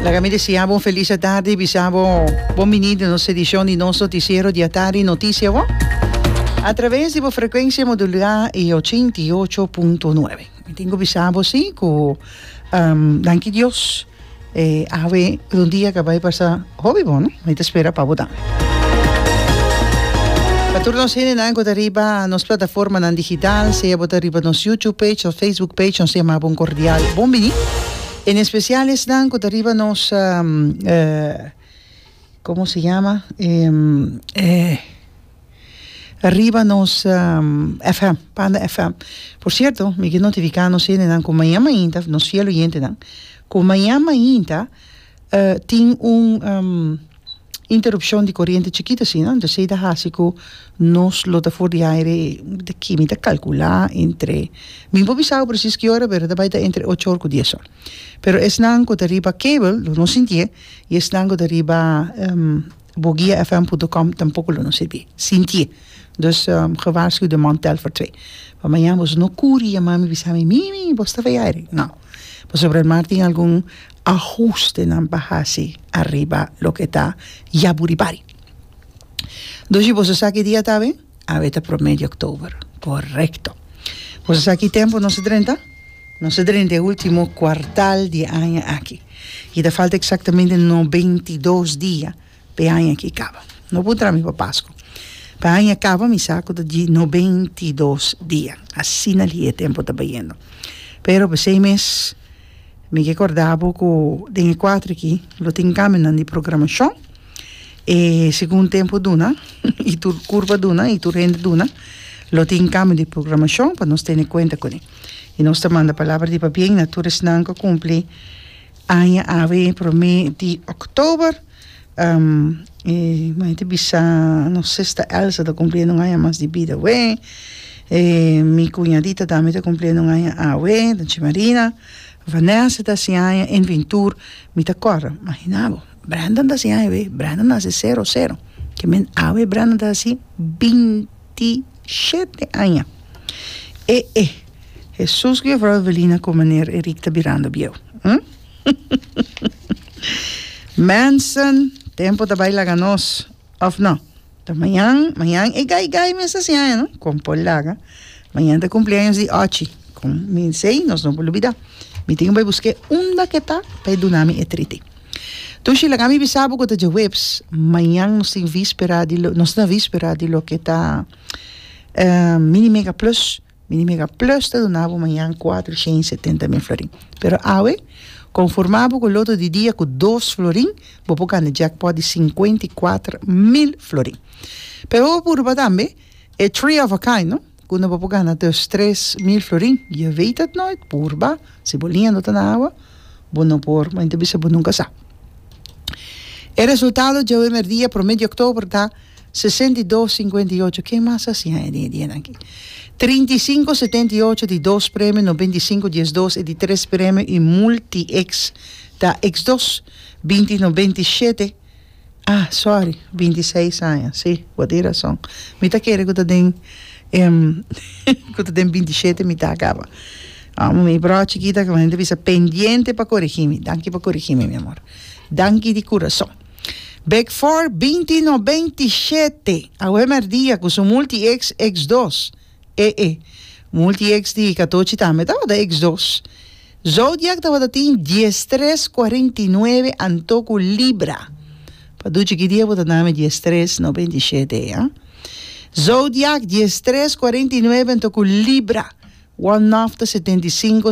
Laga mi deseabo un feliz atardi y bisabo bon bini den nos edicion di nos noticiero di atardi Noticia Bo a traves di bo frecuencia modulada y ochenta y ocho punto nueve. Mi tin cu bisabo si cu danki Dios awe un dia a caba di pasa Hopi bon no, mi ta spera pa bo ta. Pa tur nos hendenan cu ta riba nos plataformanan digital, sea bo ta riba nos YouTube page of Facebook page, nos ta yama bo un cordial bon bini. En especial esnan cu ta riba nos, um, uh, como se llama? Um, uh, riba nos um, FM, Panda FM. Por cierto, mi ke notifica nos hendenan cu maña mainta, nos fiel oyentenan, cu maña mainta, E tin un interupshon di koriente chikito asina, anto esei ta hasi ku nos lo ta for di aire e ki mi ta kalkulá entre, mi por bisa bo presis ki ora pero ta bai ta entre ocho or ku dies or, pero esnan ku ta riba cable lo no sintié i esnan ku ta riba boguiafm punto com tampoko lo no siti sintié, dus gewaarsku de man Telfer twee pa mañan boso no kuri yama mi bisa mi, mimi bo staba aire, no pasobra el mar tin algun ahustenan pa hasi ariba loke ta yaburibari. Dos si boso sa ki dia ta awe? Awe ta prome di oktober. Korekto. Boso sa ki tempu nos a drenta? Nos a drenta e ultimo kuartal di aña aki. I ta falta eksaktamente nobentidos dia. P'e aña aki kaba. No por traha mi pa Pasku. P'e aña kaba mi sa ku ta dj'i noventa i dos dia. Asina li'e e tempu ta bayendo. Pero p'e seis mes mi ke korda bo ku den e kuater aki lo tin kambinan di programashon. E segun tempu duna i tur kurba duna i tur hende duna lo tin kambio di programashon pa nos tene kuenta kuné. I nos ta manda palabra di pabien na tur esnan ku a kumpli. Aña awe prome di October y mei ta bisa nos sister Elsa ta cumpliendo un aña mas di bida awe y mi cuñadita tambe ta cumpliendo un aña awe Doña Marina, Vanessa ta haci aña en Vintur mi ta corda imagina bo Brenda ta haci aña awe Brenda naci zero zero ki men awe Brenda ta haci binti shete aña e e. Hesus ku Jefrou a veli na kon maner Eric ta birando bieu. Mensen, tempo ta bai laga nos, of no? Ta mañan, mañan e gai gai mes ta siña, no? Kon por laga. Mañan ta cumpleaños di Ochi. Kon mi sei, nos no por lubida. Mi tin ku bai busk'é unda ke ta pa e duna mi e triti. Tushi, laga mi bisa bo ku ta djaweps. Mañan nos tin víspera di lo, nos na víspera di loke ta mini mega plus. Mi di mega plus ta duna bo mañan cuatro shen y setenta mil florin. Pero awe, conforma bo cu loto di dia cu dos florin, bo por gana jackpot di cincuenta y cuatro mil florin. Pero bo por purba tambe e three of a kind, no? Kunda bo por gana dus tres mil florin. Je weet het nooit, purba. Si bo lindo ta na awa, bo no por, ma mi ta bisa bo nunca sa. E resultado djawe merdia, prome di october, ta. Sesenta i dos, sinkuenta i ocho, ken mas a siña e den e dianan aki? Trinta i sinku, setenta i ocho, di dos premio, noventa i sinku, dies dos, e di tres premio i multi X ta X dos, binti, noventa i shete, ah, sorry, binti seis aña, si, bo tin rason, mi ta kere ku ta den ku ta den binti shete mi ta kaba, amo mi broha chikita ku mi ta bisa pendiente pa korigí mi, danki pa korigí mi, mi amor, danki di kurason. Beckford binti no beinti shete awe merdia ku su multi ex ex dos e e multi ex di katochi tambe tabata ex dos zodiak tabata tin dies tres cuarenta y nueve anto ku libra paduchi ki dia bo ta nami dies tres no beinti shete a zodiak dies tres cuarenta y nueve anto ku libra one nofta setenta y cinco